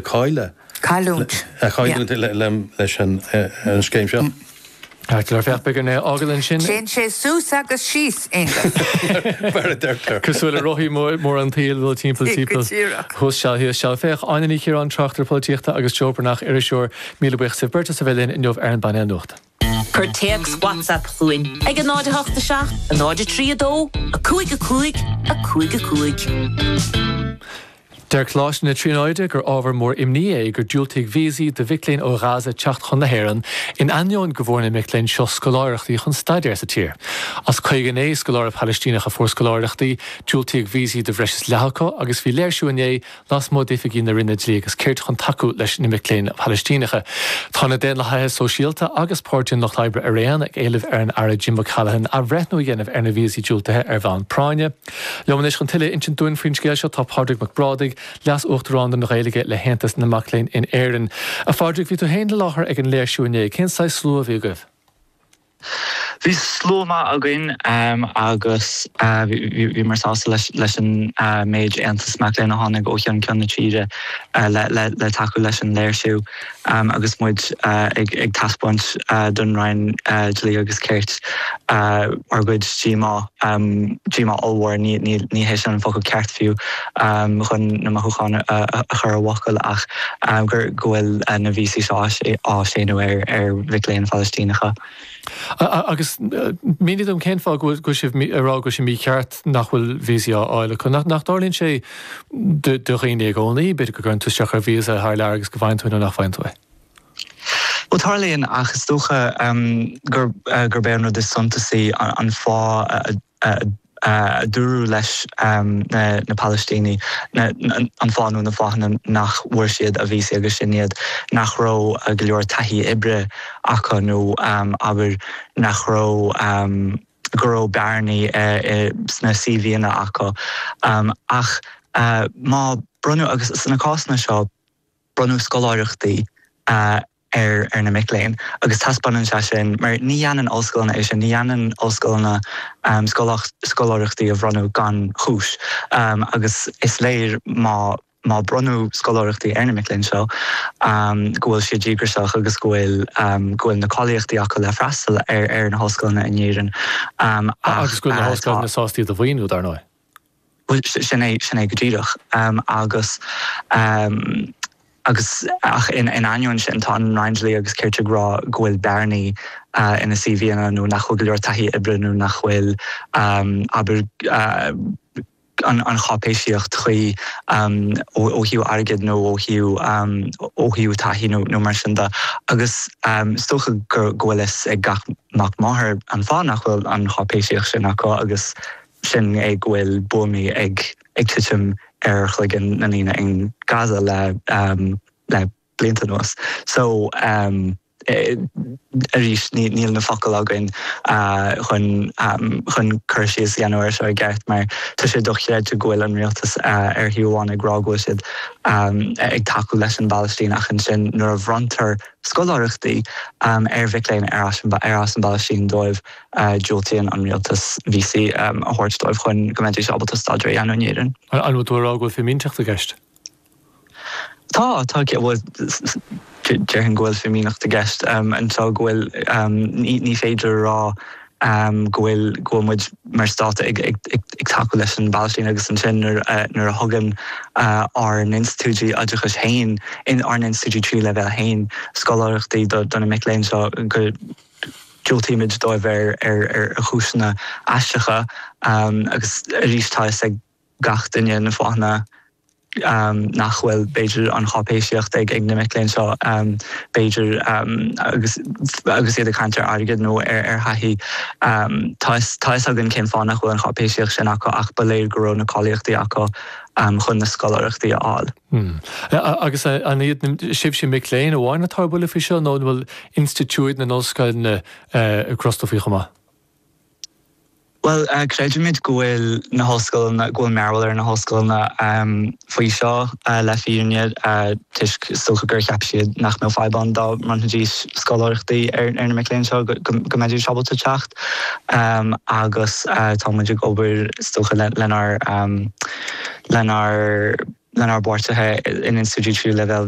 cailleadh. Cailliúint. Ag cailliúint leis an scéim seo. Caithfear ar feadh bomaite é a fhágáil ansin. Téann sé suas agus síos, Aonghus. Mar a deirtear. Cosúil le rothaí móra an tsaoil, ag dul timpeall, timpeall. Go díreach. Thuas seal, thíos seal. Féach, Áine Ní Chiaráin, tráchtaire polaitíochta, agus Joe Breathnach, iriseoir, míle buíochas libh beirt as a bheith linn inniu ar an bpainéal nuachta. Cuir téacs WhatsApp chugainn ag 08 7 03 2 5 5 5 5. Deir Coláiste na Tríonóide gur ábhar mór imní é gur diúltaíodh víosaí do mhic léinn ó Ghaza teacht chun na hÉireann, in ainneoin go bhfuair na mic léinn seo scoláireachtaí chun staidéar sa tír. As 59 scoláire Palaistíneach a fuair scoláireachtaí, diúltaíodh víosaí do bhreis is leath acu agus bhí léirsiú inné lasmuigh d'oifigí na Roinne Dlí agus Cirt chun tacú leis na mic léinn Palaistíneacha. Tá na Daonlathaithe Sóisialta agus Páirtí an Lucht Oibre araon ag éileamh ar an Aire Jim O'Callaghan athbhreithniú a dhéanamh ar na víosaí diúltaithe ar bhonn práinne. Liom anois chun tuilleadh a insint dúinn faoin scéal seo tá Pádraig Mac Brádaigh, Leas-Uachtarán don Ghaeilge le hAontas na Mac Léinn in Éirinn. A Phádraig, bhí tú féin i láthair ag an léirsiú inné, cén saghas slua a bhí agaibh? Bhí slua maith againn agus bhíomar sásta leis an méid aontas mac léinn a tháinig ó cheann ceann na tíre le tacú leis an léirsiú agus muid ag taispeáint don Roinn Dlí agus Cirt ár gcuid díomá. Díomá ollmhór, ní hé sin an focal ceart fiú. chun na mothúcháin a chur i bhfocail ach gur go bhfuil na víosaí seo á séanadh ar ar mhic léinn Phalaistíneacha. Agus mínigh dom cén fáth go bhfuil sibh ag rá go bhfuil sé mícheart nach bhfuil víosaí á fháil acu. Nach dtarlaíonn sé do dhaoine i gcónaí, b'fhéidir go gcuireann tú isteach ar víosa thar lear agus go bhfaigheann tú é nó nach bhfaigheann tú é? Bhuel, tarlaíonn ach is dócha gurb é an rud is suntasaí an fáth a. a dúradh leis na Palaistínigh, an fáth nó na fáthanna nach bhfuair siad a víosaí agus sin iad nach raibh go leor taithí oibre acu nó, abair, nach raibh, go raibh bearnaí sna CVanna acu. Ach má bronnadh, agus sna cásanna seo bronnadh scoláireachtaí. ar na mic léinn agus taispeánann sé sin mar ní dhéanann ollscoileanna é sin, ní dhéanann ollscoileanna scoláireachtaí a bhronnadh gan chúis agus is léir má má bronnadh scoláireachtaí ar na mic léinn seo go bhfuil siad díograiseach agus go bhfuil go bhfuil na cáilíochtaí acu le freastal ar ar na hollscoileanna in Éirinn ach tá. Agus go bhfuil na hollscoileanna sásta iad a mhaoiniú dar ndóigh. Bhuel, sin é, sin é go díreach. Agus, agus, ach in ainneoin sin, tá an Roinn Dlí agus Cirt ag rá go bhfuil bearnaí ina CVanna nó nach bhfuil go leor taithí oibre nó nach bhfuil, abair, an cháipéisíocht chuí ó thaobh airgid nó ó thaobh, ó thaobh taithí nó mar sin de. Agus is dócha go bhfuil fhios ag gach mac máthar an fáth nach bhfuil an cháipéisíocht sin acu agus. sin go bhfuil buamaí ag titim ar chloigeann na ndaoine in Gaza le blianta anuas so arís níl na focail againn chun cur síos a dhéanamh air seo i gceart mar tá sé dochreidte go bhfuil an rialtas ar thaobh amháin ag rá go bhfuil siad ag tacú leis an bPalaistín ach ansin nuair a bhronntar scoláireachtaí ar mhic léinn ar as an bPalaistín dóibh Diúltaíonn an rialtas víosaí a thabhairt dóibh chun go mbeidís ábalta staidéar a dhéanamh in Éirinn. An bhfuil tú ag rá go bhfuil fimíneacht i gceist? Tá, tá. Bhuel, déarfainn go bhfuil fimíneacht i gceist anseo, go bhfuil, ní féidir a rá go bhfuil, go bhfuil muid mar stát ag tacú leis an bPalaistín agus ansin nuair a, nuair a thugann ár n-institiúidí oideachais féin, ár n-institiúidí tríú leibhéal féin scoláireachtaí do na mic léinn seo go, Diúltaímid dóibh ar chúiseanna aisteacha agus arís tá fhios ag gach duine na fáthanna nach bhfuil b'fhéidir an cháipéisíocht ag ag na mic léinn seo b'fhéidir agus iad ag caint ar airgead nó ar thaithí. Tá fhios againn cén fáth nach bhfuil an cháipéisíocht sin acu ach ba léir go raibh na cáilíochtaí acu chun na scoláireachtaí a fháil. Hm. Agus an iad sibhse mic léinn amháin atá ar buile faoi seo nó an bhfuil institiúid na n-ollscoileanna ag crostadh faoi chomh maith? Bhuel, creidimid go bhfuil na hollscoileanna, go bhfuil mearbhall ar na hollscoileanna faoi seo le fírinne toisc is dócha gur cheap siad nach mbeadh fadhb ann dá mbronnfaidís scoláireachtaí ar na mic léinn seo go mbeidís ábalta teacht agus tá muid ag obair is dócha lenár lenár bpáirtithe in institiúidí tríú leibhéal.